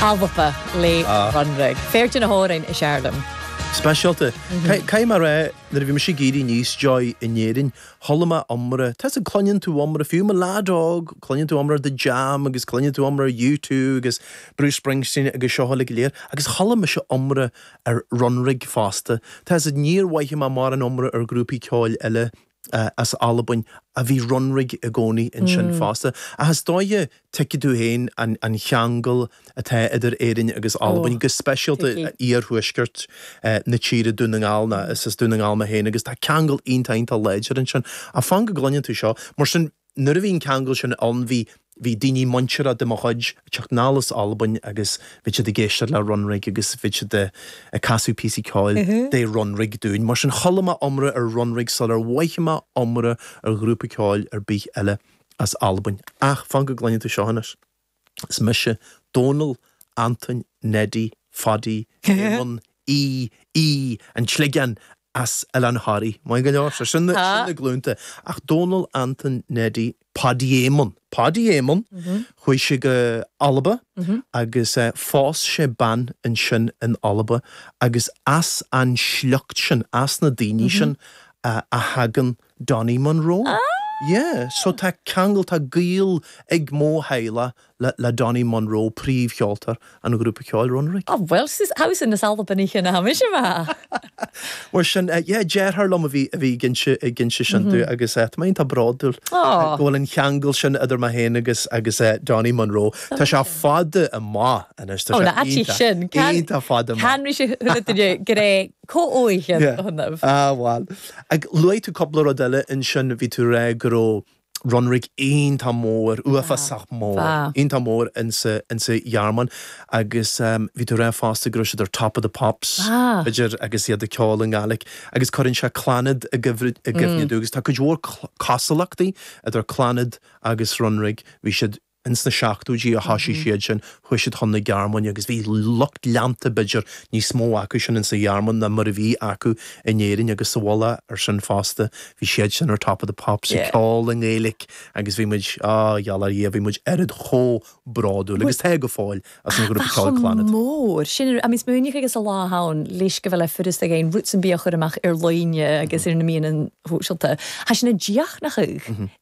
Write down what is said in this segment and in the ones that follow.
Alba le Runrig. Fear de na h-òrain as fheàrr leam. Speisialta. Caithfidh mé a rá, nuair a bhí mise ag éirí aníos, Joy, in Éirinn, chuala mé iomrá, tá a fhios a'd cluineann tú iomrá, fiú mo leaid óg, cluineann tú iomrá The Jam agus cluineann tú iomrá U2 agus Bruce Springsteen agus seo uilig go léir, agus chuala mise iomrá ar Runrig fosta. Tá a fhios a'd níor mhothaigh mé mórán iomrá ar ghrúpaí ceoil eile as Albain ach bhí Runrig i gcónaí ansin fosta. Ach is dóiche tuigfidh tú féin an cheangal atá idir Éirinn agus Ó, Albain, go speisialta tuigfidh. iarthuaisceart na tíre, Dún na nGall, nó is as Dún na nGall mé féin agus tá ceangal iontach, iontach láidir ansin. Ach fan go gcluineann tú seo. Mar sin. Nuair a bhí an ceangal sin ann bhí bhí daoine muinteartha de mo chuid ag teacht anall as Albain agus bhí siad ag éisteacht le Runrig agus bhí siad ag ag casadh píosaí ceoil de Runrig dúinn. Mar sin chuala mé iomrá ar Runrig sular mhothaigh mé iomrá ar ghrúpa ceoil ar bith eile as Albain. Ach fan go gcluineann tú seo anois. Is mise Dónall, Antoin, Neidí, Phaidí, Éamonn, Aoidh, Aoidh, an tSligeáin, as Oileán Thoraí. Maith go leor. Sé sin na glúnta. Ach Dónall, Antoin, Neidí, Paidí Éamonn, Paidí Éamonn, chuaigh sé go Alba agus phós sé bean ansin in Alba agus as an sliocht sin, as na daoine sin a thagann Donnie Munro. Yeah, so tá ceangal, tá gaol ag mo theaghlach le, le Donnie Munro, príomhcheoltóir an ghrúpa ceoil Runrig. Oh bhuel, sis, house in the south of Benichin a tháimis amach. Mar sin, yeah, deartháir liom a bhí, a bhí ag inse, ag inse sin dúinn agus tá mé iontach bródúil go bhfuil an ceangal sin idir mé féin agus, agus Donnie Munro. Tá sé fada amach anois, tá sé iontach, iontach fada amach. Ó, na aidich sin, can, can ris a h-uile duine gur e co-oghaichean Yeah. a th' annaibh. Ah bhal. Ach luaigh tú cúpla rud eile ansin, bhí tú ag rá go raibh Runrig iontach mór, uafásach mór, Ah. iontach mór insa, insa Ghearmáin agus ehm bhí tú ag rá fosta go raibh siad ar top of the pops Ah. b'fhéidir agus iad ag ceol i nGaeilic agus cuireann sé Clannad i gcuimhrid, i gcuimhne Mm. dúinn agus tá cuid mhór cla, cosúlachtaí idir Clannad agus Runrig, bhí siad, Ins na seachtóidí a thoisigh siadsan. Chuaigh siad chun na Gearmáine agus bhí lucht leanta b'fhéidir níos mó acusan ins an Ghearmáin ná mar a bhí acu in Éirinn agus sa mhullach ar sin fosta bhí siadsan ar Top of the Pops ag ceol i nGaeilic agus bhí muid, á, gheall ar Dhia, bhí muid oiread chomh bródúil agus tá go fóill as an ghrúpa ceoil Clannad. mór sin ar am smaoinigh agus a lá ann leis gu bheil e furasta ag aon rud sin bia a chur a-mach air loidhne agus air na meadhanan sòisealta. Tha sinn a' dìochuimhneachadh.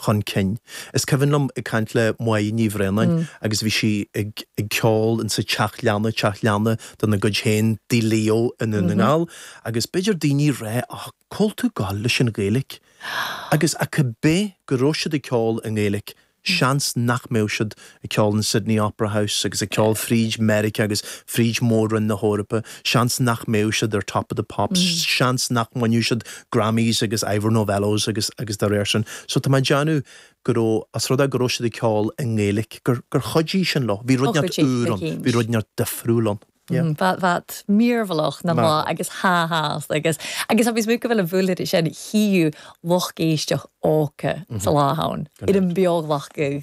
chun cinn. Is cuimhin liom ag caint le Moya Ní Bhraonáin agus bhí sí ag ceol in sa teach leanna, teach leanna de na gcuid féin Tigh Leo i nDún na nGall agus b'fhéidir daoine ag rá ó cá bhfuil tú ag goil leis an Ghaeilic agus ach ab é go raibh siad ag ceol i nGaeilic seans nach mbeadh siad ag ceol in Sydney Opera House agus ag ceol fríd Meiriceá agus fríd Mhór-Roinn na hEorpa, seans nach mbeadh siad ar Top of the Pops, seans nach mbainfeadh siad Grammys agus Ivor Novellos agus, agus dá réir sin. So tá mé ag déanamh go raibh, os rud é go raibh siad ag ceol i nGaeilic, gur, gur chuidigh sin leo. Bhí rud ineacht úr ann, bhí rud ineacht difriúil ann. Yeah. Bheadh, bheadh. Mearbhlach ná maith agus ha has agus, agus agus muid go bhfuil an bhualtheory sin thíu lucht éisteach óca sa lá ann, ar an mbeoghach go.